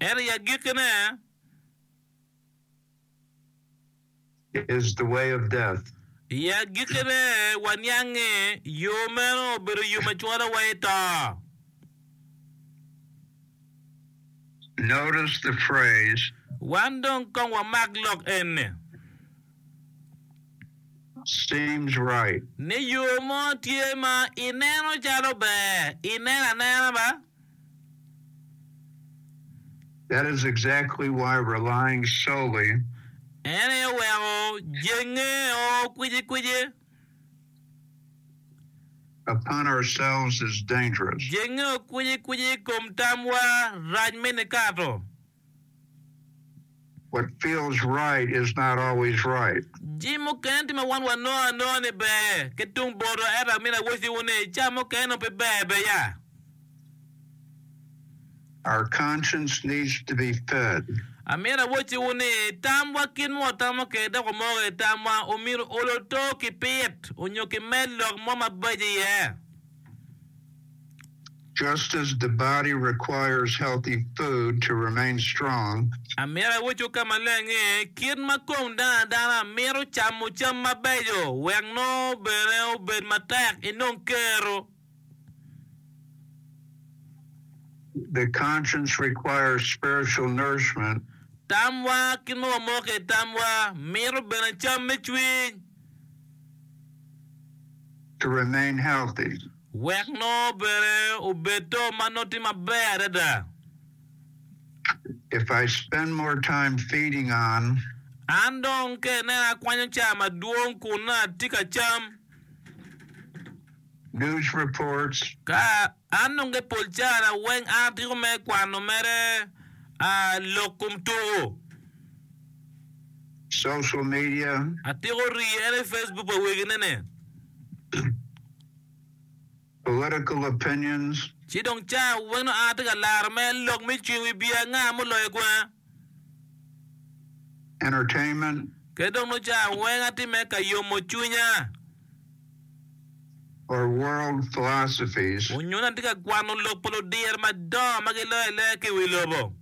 Ento i agikkine, i agikkine waniang ni yo meno obedo yo ma cwalowa i to. Wan dong kong wamak lok eni. seems right. Me yo mo tye ma i neno calo ber i neno anena ba. That is exactly why relying solely. En aye oweko jenge o kwici kwici. Upon ourselves is dangerous. Jenge o kwici kwici i kom tamwa rac me nikato. What feels right is not always right. Jami mukene tye ma wan wanongo anonga ni ber ki tung boto, ento amito awacciwu ni i cawa mukene nongo pe ber beya. Our conscience needs to be fed. Amito awacciwu ni, tamwa kit ma watamo kwede dok wamoko kwede tamwa omyero olo to ki pit onyo ki med lok mo mabeco iye. Just as the body requires healthy food to remain strong, Amyero awoco ka maleng ni, kit ma kom dano adana mito camo cam mabeco wek nongo bene obed matek inong kero. The conscience requires spiritual nourishment. Tamwa ki nongo wamoko i tamwa mito bene cam me cwiny. to remain healthy. Wek nongo bene obed to ma nongo tye maber adada. If I spend more time feeding on. An dong ka inena akwanyo caa madwong kun nongo atye ka cam. News reports. Ka. An nonge pol cara weng a atiko me kwano mere a lok kom tuku. Social media. Atiko rii ene Facebook pa wegi ne ne. Political opinions. Ci dong cara weng nongo an atye ka laro me lok me cwiny wi bia nga mo loyo kwena. Entertainment. Kede dong nongo cara weng atye me ka yomo cwinya. or world philosophies. Munyona tye ka kwano lok pa ludyere madongo ma giloyo aloya ki i wi lobo.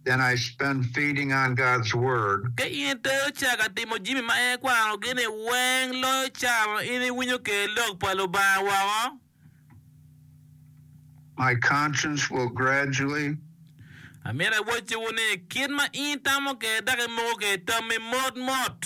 Then I spend feeding on God's Word. Ka in itero ca ka timo jami ma en kwanogi-ni, weng loyo ca ma in iwinyo kwede lok pa Lubanga woko. My conscience will gradually. Amito awocciwu ni, kit ma in itamo kwede dok imoko kwede tammi motmot.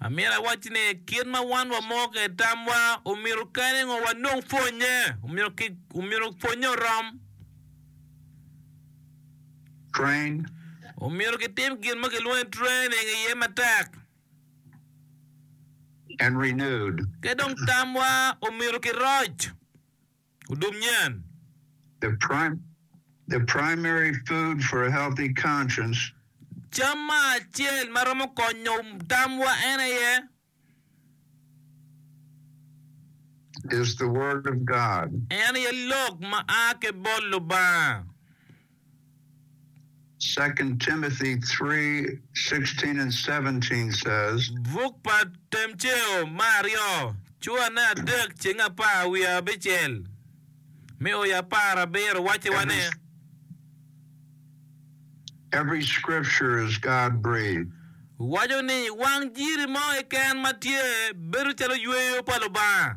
Amyero awacci ni kit ma wan wamo ki i tamwa omyero kene ngo wanong pwonye. Omyero pwonye orom. Omyero kitim gin ma kilwongo ni training iye matek. Ki dong tamwa omyero kiroc. Odum nyen. The primary food for a healthy conscience. Cam ma acel ma romo konyo tamwa en aye. Is the word of God. En aye lok ma a ki bot Lubanga. Second Timothy three sixteen and seventeen says. Buk pa Temceo ma aryo, Cuane adek ceng apar wiye abicel me oya apar abiro wacci wa ni. Every scripture is God breathed. Waco ni wang jiri mo keken ma tye bedo calo yweyo pa Lubanga.